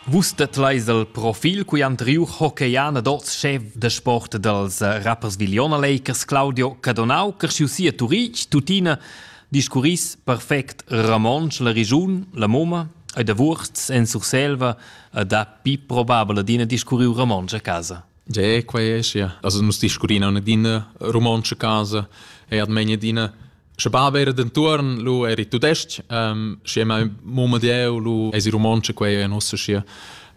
Vus tedleis el profil cui han triu hockeyana d'oz chef da sport dals rappers Viliona Lakers Claudio Cadonau, cresciu si a Turitg, tuttina discurris perfect romontsch la regiun, la moma e da Wurz en Surselva e dapi probabel adina discurriu romontsch a casa. Ge, quei è sia. Also nus discurrina in adina romontsch a casa e ad megna adina Sche bab era dentuorn lu era il tudestg, ähm, schi è mai mumma dieu lu es i romontsch quei è nossa schi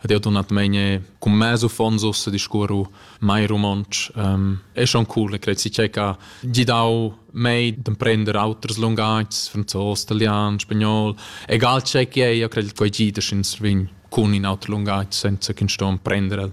ad io donatmain cum meso fonsos a discurru mai romontsch. Ähm, è schon cool, e credo si c'è che gli dau mei d'emprender auters lungagis, franzos, italian, spagnol, egal c'è che è, io credo che gli da schin svin cun in auter lungaggio senza che sto emprender el.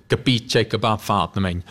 capi tgei che va fatnamein.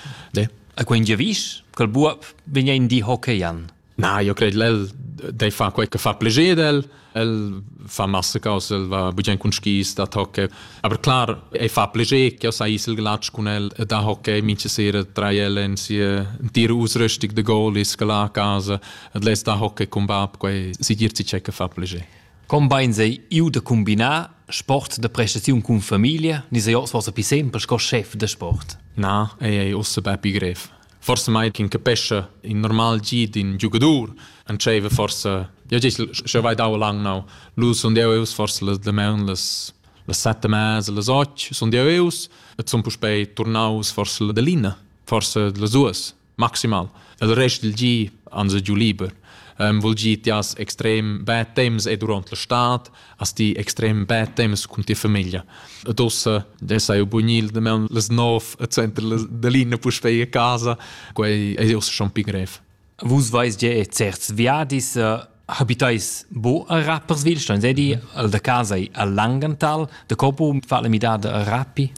A quei giavisch ch'el buob vegn ein di hockeyern. Na, io cred lel dei fa quei che fa pleger del, el fa massa cose, el va bugen cun skis da hockey, aber klar, ei fa pleger che sa isel glatsch cun el da hockey, minche sera drei ellen sie dir ausrüstig de goal is gela a casa, et les da hockey cum bab, quei si dir ci che fa pleger. Cumbains ei iu da cumbinar sport da prestaziun cun famiglia ni sei oz forsa pli sempel sco chef da sport? Na, ei ei ussa bepi grev. Forse mai ch'in capescha in normal gi d'in giugadur entscheiva forse ja gest schon weit auch lang now lu sun deu eus forse las demaun las las sette mese las och sun deu eus et sun puspei turnaus forse la delina forse las duas maximal. Il rest dal gi ans è giu liber. Um, vuol dir, ti has extrem bad temps e durant la stad, hast ti extrem bad temps con tia famiglia. Ed ossa, da sei bunil, da meun les nov e center da linea puspei a casa, quei è ossa schon pi grev. Vus vais ge e certs viadis uh, habitais bo a Rapperswilstein, sei di al da casa al Langenthal, de Copo, fa le midade a Rappi?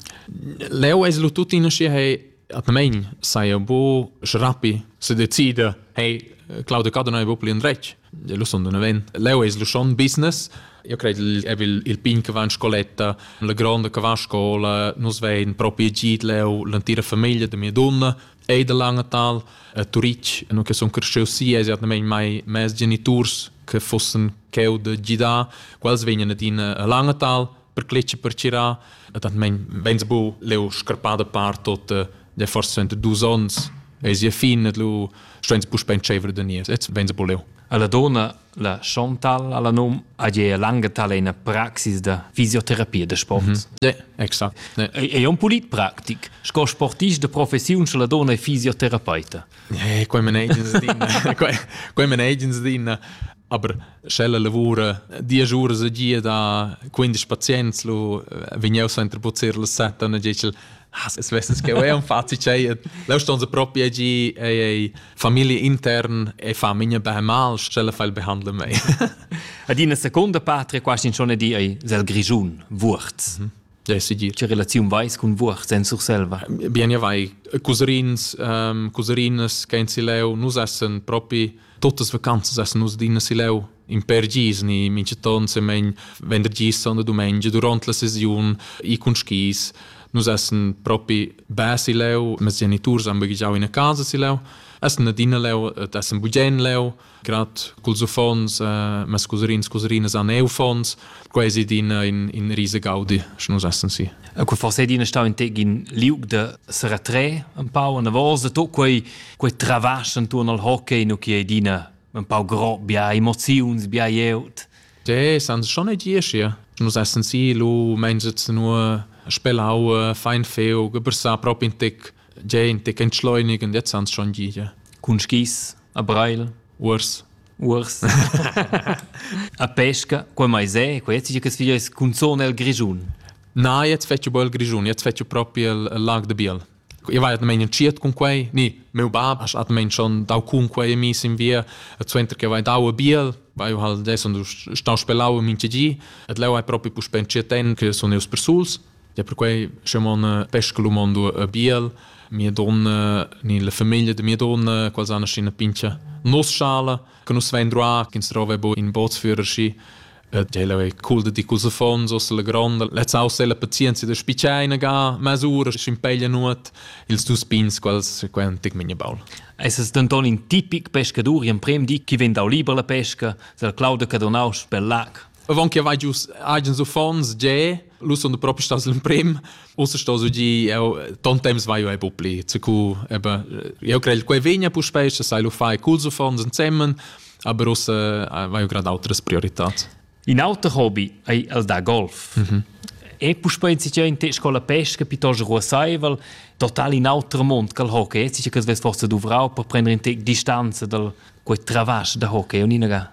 Leo es lu tuttina schi hei atnamein sai bu schrapi se decida hey Claudio Cado non è proprio in retg lo son d'un event leo es lo schon business io credo il è il pin che va in scoletta la gronda che va a scuola nus vein proprio git leo l'antira famiglia de mia donna e de Langenthal a Turic no che son cresciu si es atnamein mai mes geniturs che fossen cheu de gidar quels vegnan ad in a Langenthal per cletg per cirà e tant men veins bu leu scarpada par tot de forse 22 ons e sia fin et lu steins bu spentschever de nies et veins bu leu alla donna la Chantal alla num a je lange talena praxis da fisioterapia de sport. Mm -hmm. ja, exakt. Ja. È un pulit praktik. Sco sportist de professiun la donna è fisioterapeuta. Eh, qua me negens din. Qua me negens din. Aber sch'ella lavura diesch uras e gia da quindisch pazients, lu vegn jeu suenter buzzir las set, dann dice ich, ah, se svesses che è un fazi c'è, leu ston se proprio gi ei ei famiglia intern e fa minha beh mal, sch'ella fa il behandle mei. Ad ina seconda patria quasi schon di ei sel grigiun Wurz. Mhm. Ja, si dir. Che relaziun vais cun Wurz en Surselva? Bien, ja vai. Cousins, um, couserinas che in Sileu nus essen propi Totas vacanzas essen nus adina sileu in per gis ni minchaton semen vendergis und domenica durant la sesiun i cun skis nus essen propi be sileu ma geniturs han baghegiau ina casa sileu essen adina leu et essen bugen leu grad culs uffants eh, ma scuserins scuserinas han eu uffants quasi d'ina in, in rise gaudi sche nus essen si e quei forse din stau in teg in liug de seretre un pau una vosa to quei quei travasch intorno al hockey no che dina un pau gro bia emoziuns bia jeut De, san schon nicht hier schier. Nus essen si lu mein sitz nur spelau fein feu geber sa prop in tic de in tic entschleunigen jetzt ans schon gide. Cun skis a Breil. Urs. Uors. a pesca, quei mai se, quei jetzt che sfiglia es cunzone el Grischun. Na, jetzt fetchu bel Grischun, jetzt fetchu propi il, il lag de Biel. Io vai atmain entschiet cun quei, ni, meu bab ha atmain schon dau cun quei mis in via, et suenter che vai dau a Biel, vai hal des und stau spelau in minche gi, et leu hai propi puspe entschiet en che sun eus persuls. Ja perquai sche mon pesca lu mondo a biel mia donna ni la famiglia da mia donna quals han ina pincha nos schala che nus vein droa che ins trova bo in bootsführer schi Ella è cool da di cus affons os la gronda. Let's house ella pazienza da spiceina ga masura schimpeglia nuot ils dus pins quals quen tic minha baul. Es es denton in tipic pescadur in prem di chi vegn dau liber la pesca, sel Claude Cadonaus per lac. Avant che vai giu agens uffants, ge, lu sun propi stas l'emprim. Ussa sto su gi, eu ton temps vai ei pupli. Cu eben, eu crei quei vegna puspei, se sai lu fai culs uffants ensemen, aber ussa vai eu grad outras prioritats. In auter hobby ei el da golf. Mm -hmm. E puspei in situaziun te scola pesca piuttosto ruasaivel, total in auter mond che il hockey. Sicher che svess forse duvrau per prendere in te distanza dal quei travasch da hockey, un'inaga.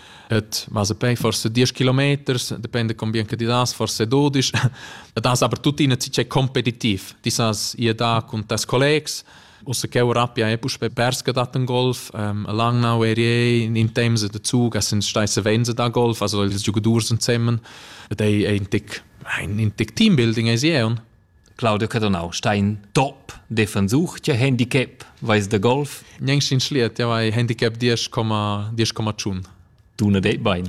Et ma se pei forse 10 kilometers, depende con bien che ti das, forse 12. das aber tuttina ci c'è competitiv. Ti sas ihr da con tes collegs, Usse che Rapia è pus perske dat en Golf, ähm, lang now area in Tems de Zug, es sind steisse Wense da Golf, also die Giocadors sind zusammen. Das ist ein Tick ein Tick Teambuilding ist hier. Claudio Cadonau sta in top defensur che handicap vais de golf Gnang sin schliet ja vai handicap 10,10,tschun Dune det bein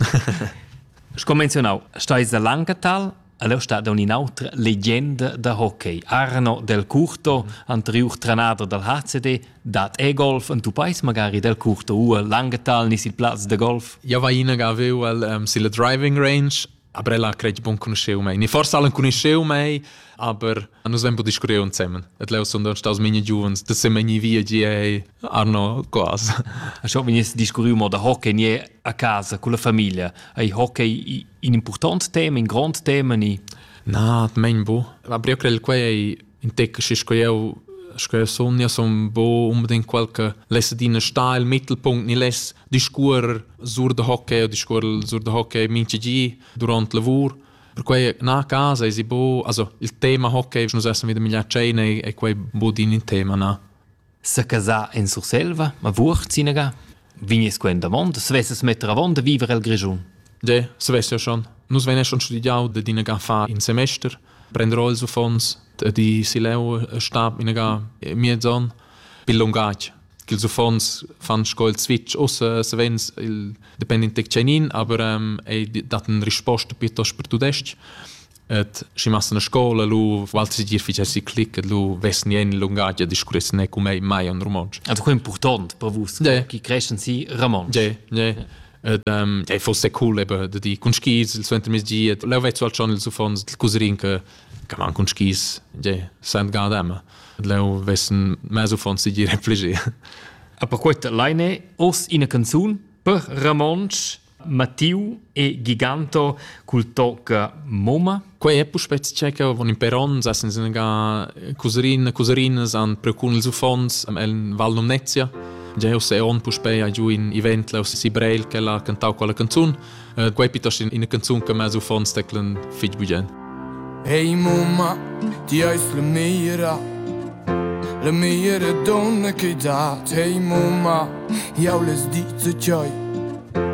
Sco menzionau stais da Langetal Aleu sta da un'inautra legenda da hockey. Arno Del Curto, anterior trenader dal HCD, dat e-golf en tu pais magari Del Curto u a Langetal nis il plaz de golf? Ja va ina ga aveu el um, silla driving range Aber ella credi buon conosceu mei. Ni forse allen conosceu mei, aber nus hem bu discurreu insemmen. Et leu sun don staus mine giuvens, da se meni via gie Arno quas. A scho venies discurriu mo da hockey nie a casa con la famiglia. Ei hockey in important tema, in grond tema ni? Na, mein bu. La brio crel quei in tec schi sco eu sco eu sun ja sun bo unbedingt quel che less adina sta il mittelpunkt ni less discuor sur da hockey o discuor sur da hockey mincha gi durant lavur perquei na casa es i bo also il tema hockey nus essan wieder migliar tscheina e quei bod in in tema na Secasar en Surselva, ma Vuorz sinagà? Vignes quent avond, svessas metter avond a viver el Grischun. De, svesser schon. Nus vein schon studiau de dinaga fa in semester, prenderò ils uffons di sileu stab inaga miezon bil lungatg che ils uffons fan sco il switch ossa savens il dependent tec tschenin aber ähm ei dat ein risposta piuttosto per tudestg Et schi massa na scola lu Walter Gier ficha si clic lu vessen jen lungagia discurress ne cum ei mai on romontsch. Also quel important per vus. Ja. Chi creschen si romontsch. Ja, ja. Et ähm ja fosse cool eben de di cun skis il suenter mes gi et leu vezzo al schon il sufons il cuserin che che man cun skis ja sent gadem. Leu vessen meso fons si dire affligé. Aber gut, Leine, os ina canzun per romontsch Mattiu e Giganto cul toc mumma. Quei è puspei tschecca von in peron, sa sen ga cuserin cuserinas an precun ils uffants el Val Numnezia. Geo se on puspei a giu in event laus si Breil che l'ha cantau quella canzun. Uh, quei piuttosto in canzun che mes uffants teclen fitg bugen. Hey mumma, ti hai la mira La mira donna che dat, hey mumma, jau les dice cioi.